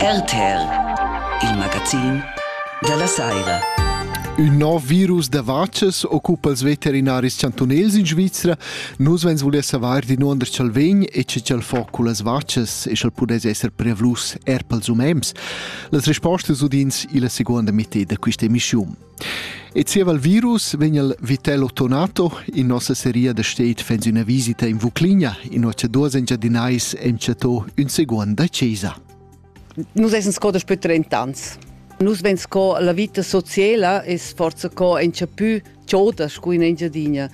RTL, il magazin dalla saira. Ün nov virus da vachas occupa els veterinaris chantunels in Svizra. Nus vens voler savoir di nuonder ch'el vegn e che ch'el fa cullas vachas e sch'el pudess esser prevlus er pels umens. Las respostas udins illa seguonda meteda da quista emischiun. E zieva il virus vegn il Vitello Tonato in nossa seria da state fans üna visita in Vucligna, in ocha duos engiadinais enchatto ün seguond da chesa. Nus esen sco da spütter in tans. Nus ven sco la vita sociela es forza co enchapü choda scu in Engiadina.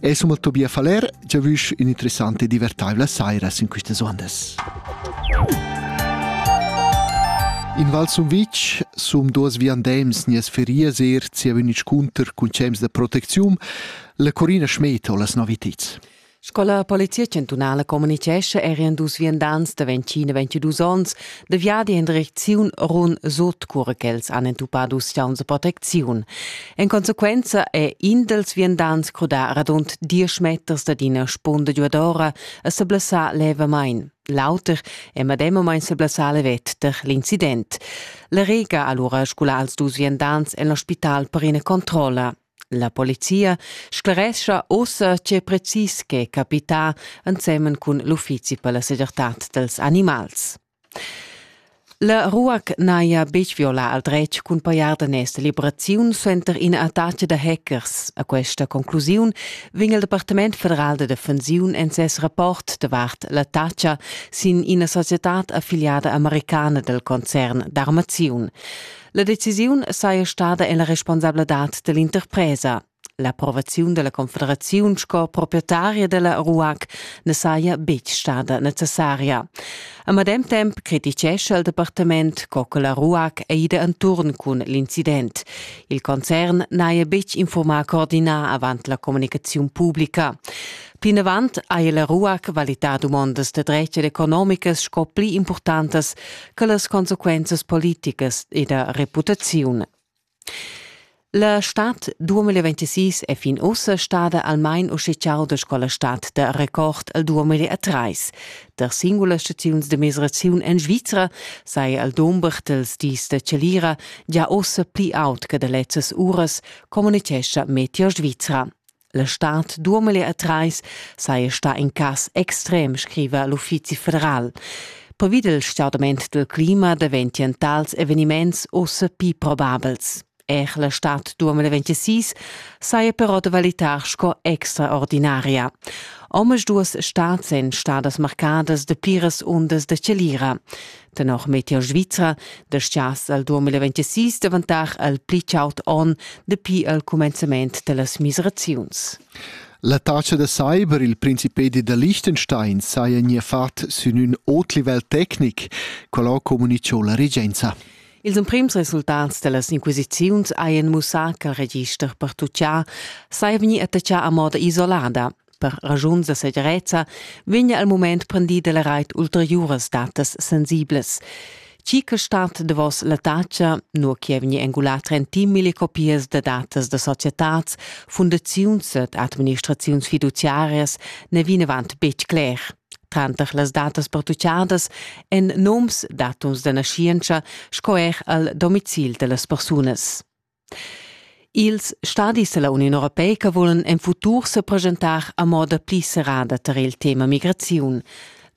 E summa Tobia Faller, già vusch un'interessante e divertaivla saira in queste ondas. In Val Sumvitg, sum duas viandems nies ferias er sia venic cunter cun cems da proteczium, la Corina Schmed ho las noviteds. Scola Polizia Chantunala communicescha er en dus viandants da 20 e 22 onns De viadi in direcziun run sut cura ch'els han entupado ustiauns de protecziun. En consequenza è in dels viandants crudà radund diesch meters dad ina spunda giuadora e seblessà levamain. L'auter è medemamain seblessà levet per l'incident. La Rega ha allura sgulà als dus viandants en l'ospital per ina controlla. La polizia sclerescha ussa tge precis che è capità ensemen cun l'uffizi per la segirtad dels animals. La ruac n'haja betg violà al dretg cun pajar daners liberaziun suenter ina attacca da hackers. A questa conclusiun vegn il Departament federal da defensiun en ses rapport davart l'attacca sin ina società affiliada americana del concern d'armaziun. La decisiun saja stada en la responsabladad da l'interpresa. L'approvaziun da la Confederaziun sco proprietaria da la RUAC na saja betg stada necessaria. A medem temp crititgescha il departament co che la RUAC è ida enturn cun l'incident. Il concern n'haja betg infurmà coordinar avant la communicaziun publica. Plinavant haja la RUAC valità dumondas da dretg ed economicas sco pli importantas quellas consequenzas politicas e da reputaziun. La stad 2026 è fin ussa stada almain ufficial da scola stat da record al 2003. Der singulas staziuns de migraziun en Svizra sei al dumber dels dis da Celira già ossa pli aut che da lezzas uras, communicescha Meteo Svizra. La stad duamele a trais saja stà in cas extrem, scriva l'Uffizi federal. Pervid il stordament del clima daventian tals eveniments ossa pli probabels. Er la stad 2026 saja però da valitar sco extraordinaria. Omas duas stads èn stadas marcadas de pliras undas de celira. Tenor Meteor Svizra descias al 2026 davantar al pli chaud onn dapi al cumenzament dallas miseraziuns. La taxa da cyber il Principedi da Liechtenstein saja nia fat sün ün ot livel tecnic, qual comunicho la regenza. Ils emprims resultats dallas inquisiziuns hajan mussà ch'il register per tutgià saja vegnì attachà a moda isolada. Per ragiuns da segirezza vegna al mument prendida la rait ulteriuras datas sensiblas. Chi che stat davos la tacha, nur che vegni engulà trentimile copias da datas da societats, fundaziuns ed administraziuns fiduciarias ne vinavant betg cler. Tranter las datas pertuchadas en noms, datums da naschientscha sco er al domicil da las persunas. Ils stadis dalla Uniun europeica vulan en futur sepresentar a moda pli serrada tar il tema migraziun.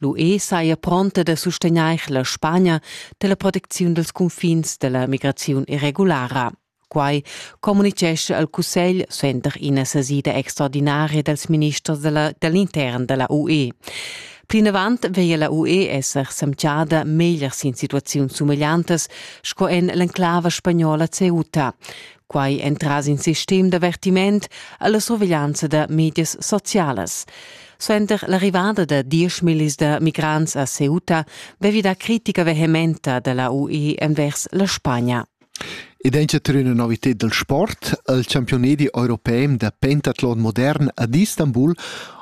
L'UE saja pronta da sustegnair la Spagna dalla protecziun dals cunfins dalla migraziun irregulara. Quai communitgescha al Cussegl suenter ina sesida extraordinaria dals ministers dall'intern dalla UE. Plinavant veglia la UE esser semchada meglier sin situaziuns sumegliantas sco en l'enclava spagnola Ceuta. Quai entras in sistem d'avertiment alla surveglianza da medias socialas. Suenter l'arrivada da dieschmillis da migrants a Ceuta vevi da critica vehementa da la UE envers la Spagna. Id dainsa trer üna novited dal sport al champiunedi europem da pentatlon modern ad Istanbul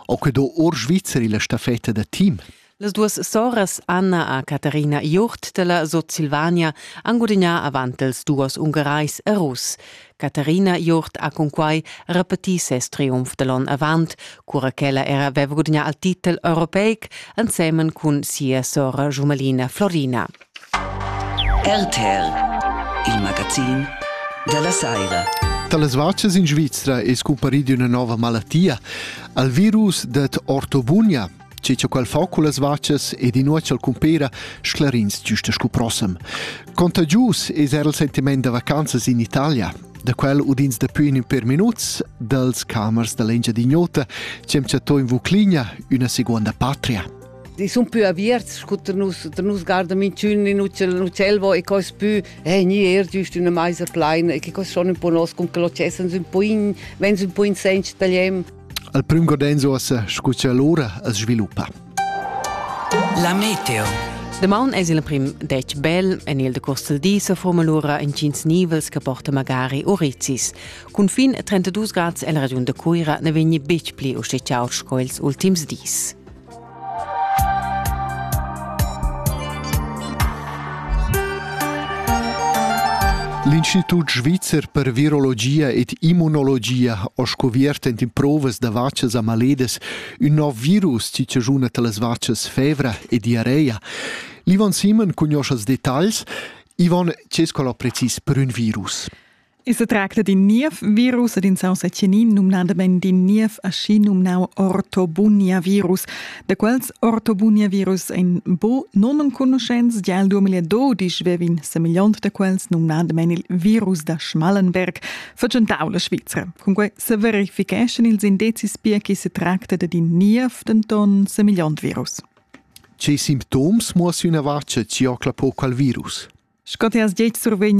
ho que do our Svizra illa staffetta da team. Las duos soras Anna a Katharina Jurt della Sutsilvania han gudagnà avant els duos Ungarais e Russ. Katharina Jurt ha cunquai repetì ses triumf da l'on avant, cura ch'ella era aveva gudagnà il titel europeic ensemen cun sia sora Jumelina Florina. RTL, il magazin dalla saira. Dallas vacas in Svizra è scumparì una nuova malattia, al virus det ortobunia, che c'è qual fa con las vacas ed in uocel cumpera sclarins giusta scu prossem. Contagius è era il sentiment da vacanzas in Italia, da quel udins dapi in per minuts dals camers da l'Engia di Gnota c'è chattò in Vucligna una seconda patria. sun pü aviarts scu ter nus, ter nus garda minchün in ucel uccelvo e cos pü eh gni eir giüst üna maisa plaina e che cos schon ün po nos cun que l'ocesans ün po in vens ün po in sench tagliem. Al prüm Godenzo as scu cha l'ura as sviluppa. La meteo Damaun es il prim detg bel en il decurs del di sa forma lura intgins nivels che porta magari orizis. Cun fin 32 grads el regiun de Cuira ne vegni betg pli usticciaus sco ils ultims dis. L'Institut svizzer per virologia ed immunologia ha scoviert en provas da vacas a maledes ün nov virus chi chaschuna talas vacas fevra e diarrea. L'Ivan Simon cugnoscha els detagls. Ivan, che es quel precis per ün virus? I se tracta d'in niev virus ed insauns a Cenin, numnadamain d'in niev aschi numnau ortobunia-virus, da quels ortobunia-virus ein bo nonenconuschents. Gia il 2012 vevin semegliont da quels, numnadamain il virus da Schmallenberg, vergentau la Svizra. Cunquei se verificheschan ils indezis pia che se tracta d'in niev, denton semegliont virus. Che simptoms muossa üna vart che ti ocla po qual virus? Sco ti has detg survegn